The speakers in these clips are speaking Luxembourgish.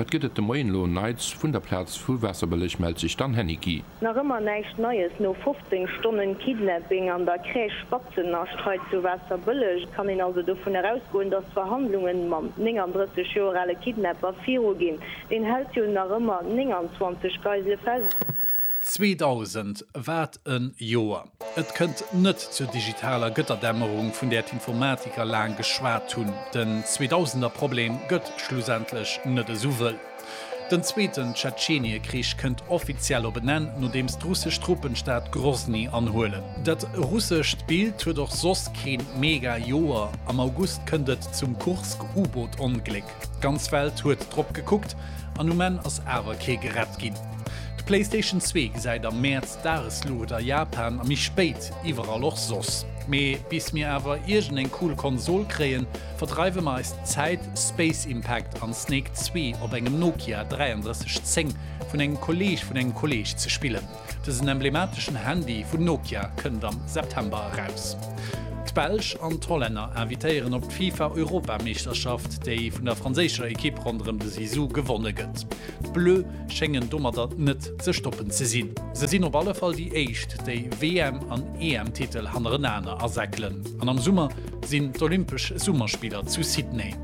Wat gëtt et de Moien elo Neits? Vun der Plaz vu Waasserbëlleg mellt sech d'Anne Heniqui. Nach ëmmer näischt Neies no 15 Stonnen Kidnapping an der Crèche Spatzennascht hei zu Waasserbëlleg. Et kann een also dovun erausgoen, dass d'Verhandlungen mam 39 Joer ale Kidnapper viruginn. Deen hält jo nach ëmmer 29 Geisele fest. 2000 wat en Joer! Et kënnt net zur digitaler Gëtterdämmerung vun där d'Informatiker laang geschwat hunn. Den Zweedausender Problem gëtt schlussendlech net esou wëll. Den zweeten Tschetscheniekrich kënnt offiziell op en Enn, nodeems d'russesch Truppen d'Stad Grosny anhuelen. Dat russescht Bild huet och soss kee mega Joer, Am August kënnt et zum Kursk-U-Boot-Ongléck. D'ganz Welt huet drop gekuckt an um Enn ass awer kee gerett ginn. D'Playstation zwee gesäit am Mäerz d'Dagesluucht a Japan a méi spéit iwwerall och soss. Mee bis mir awer iergend eng cool Konsol kréien, verdreiwe mer eis Zäit Space Impact an Snake zwee op engem Nokia 3310 vun engem Kolleeg vun engem Kolleeg ze spillen. Dësen emblemateschen Handy vun Nokia kënnt am September eraus. D'Belsch an d'Hollänner invitéieren op d'FIFA-Europameeschterschaft, déi vun der franséischer Ekipp ronderëm de Zizou gewonne gëtt. D'Bleu schéngen domatter net ze stoppen ze sinn. Se sinn op alle Fall déi éischt, déi WM an EM-Titel hannerenaner asäckelen. An am Summer sinn d'Olympesch Summerspiller zu Sydney.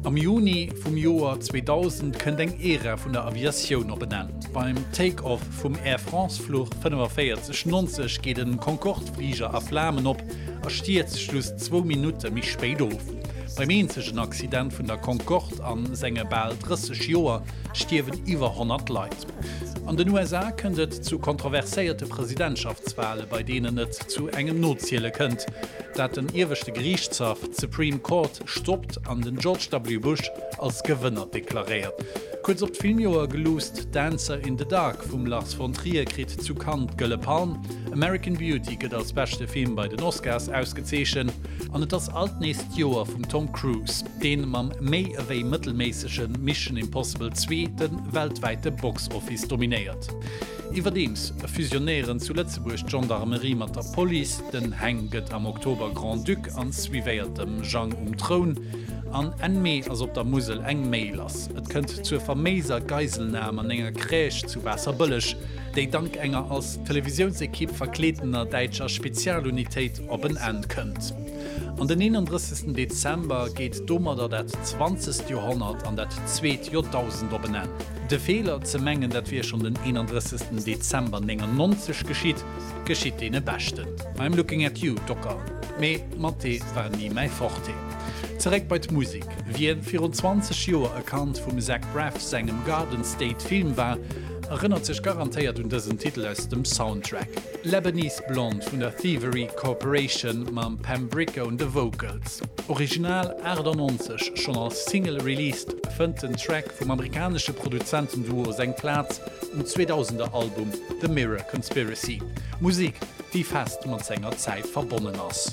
Am Juni vum Joer 2000 kënnt eng Ära vun der Aviatioun op en Enn. Beim Take-off vum Air France-Fluch 45 90 geet en Concorde-Fliger a Flamen op a stierzt just zwou Minutte méi spéit of. Beim eenzegen Accident vun der Concorde a senge bal 30 Joer stierwen iwwer 100 Leit. An den USA kënnt et zu kontroverséierte Presidentschaftswale, bei deenen et zu engem Noziele kënnt, dat den ieweschte Geriichtshaff, d'Supreme Court, stoppt an den George W. Bush, als Gewënner deklaréiert. Kuerz op d'Filmjoer geluusst, Dancer in the Dark vum Lars von Trier kritt zu Cannes d'Gëlle Palm, American Beauty gëtt als beschte Film bei den Oscars ausgezeechent an et ass alt nees d'Joer vum Tom Cruise, dee mam méi ewéi mëttelméissege Mission Impossible 2 de weltwäite Box Office dominéiert. Iwwerdeems fusionéieren zu Lëtzebuerg d'Gendarmerie mat der Police. Den Heng gëtt am Oktober Grand-Duc an suivéiert dem Jang um Troun. An Enn Mee ass op der Musel eng Méi lass. Et kënnt zur faméiser Geiselnam an enger Crèche zu Waasserbëlleg, déi dank enger als Televisiounsekipp verkleedener däitscher Spezialunitéit op en Enn kënnt. An den 31. Dezember geet domadder dat zwanzegt Joerhonnert an dat zweet Joerdausend op en Enn. De Feeler, ze mengen dat wier schonn den 31. Dezember 99 geschitt, geschitt deene Beschten. I'm looking at you, Docker, mee Mathé war ni mäi Forte. Zeréck bei d'Musek, Wien virun 20 Joer e Kand vum Zach Braff sengem Garden State Film war, erënnert sech garantéiert un dësen Titel aus dem Soundtrack. Lebanese Blonde vun der Thievery Corporation mam Pam Bricca un de Vocals, original 98 schonn als Single released, fënnt den Track vum amerikanesche Produzentenduo seng Plaz um 2000er Album The Mirror Conspiracy, Musek, déi fest mat senger Zäit verbonnen ass.